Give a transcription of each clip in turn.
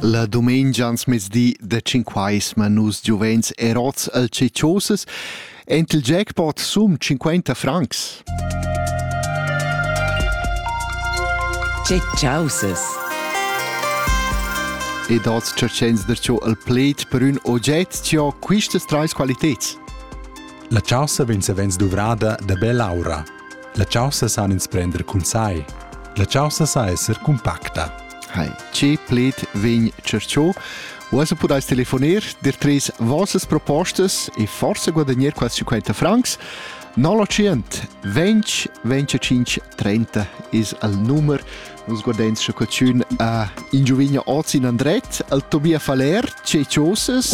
La dumengia ans mezdi de cinquais ma nus giuvens erots al cecioses ent il jackpot sum 50 francs. Cecioses. E dats cercens der ciò al pled per un ogget cio quistas treis qualitets. La chasa vegn savens duvrada da bel aura La chaussa san ins prender cun sai. La chaussa sa esser cumpacta. Hi. Ce pled vegn cerciò? Uossa pudais telefoner dir tres vossas propostas e forse guadagnar quasi 50 francs. 900 20 25 30 is al nummer Uns guardens che cucciun a in giovigna oz in andret al Tobia Faler, ce ciosas.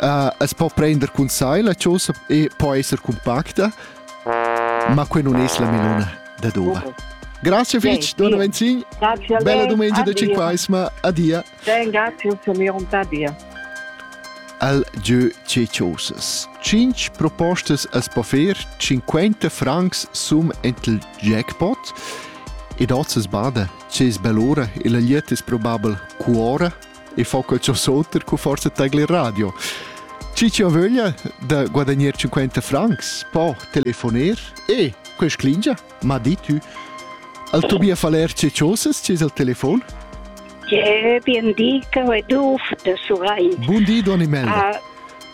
uh, es po prender cun sai la chosa e po esser compacta, ma que non es la melona da dova. Grazie fitch, Dona Venzin. Bella domenica da Cinquaisma. Adia. Sen grazie, Samiron Tadia. Al Jeu Ceciosas. Cinc propostas as po fer, 50 francs sum entel jackpot. E dozes bada, ce es bell'ora e la liet es probabel cuora e fa quel sursoter cu forza tegl il radio. Ci chi ho vöglia da guadagnar 50 francs po telefoner e quest clingia m'ha dit tu al Tobia Faler ce chosas ci es al telefon? Je bien di che du de Surain. Buon di, Don Imelda. Ah,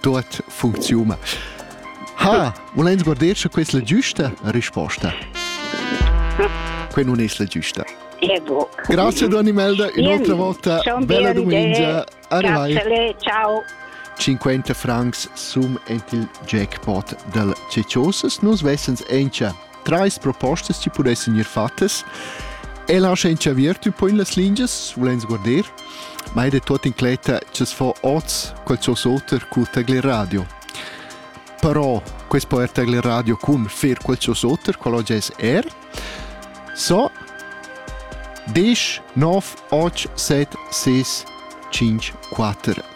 tuot funcziuna. Ha, volens guarder sche questa è la giusta risposta? Quella non è la giusta. Grazie Don Imelda e un'altra volta bella domenica. Arrivai. Ciao. 50 francs sum ent il jackpot del Ceciosas. Nos vessens encia trais propostas chi pudessan gnir fattas. El ha schain chaviert ün po in las lingias, vulends guarder, ma ed è tot incletta cha's fa oz qualchosa oter cul Tagle Radio. Però quest po er Tagle Radio cun fer qualchosa oter, qual oggi es er. So, 10 9 8 7 6 5 4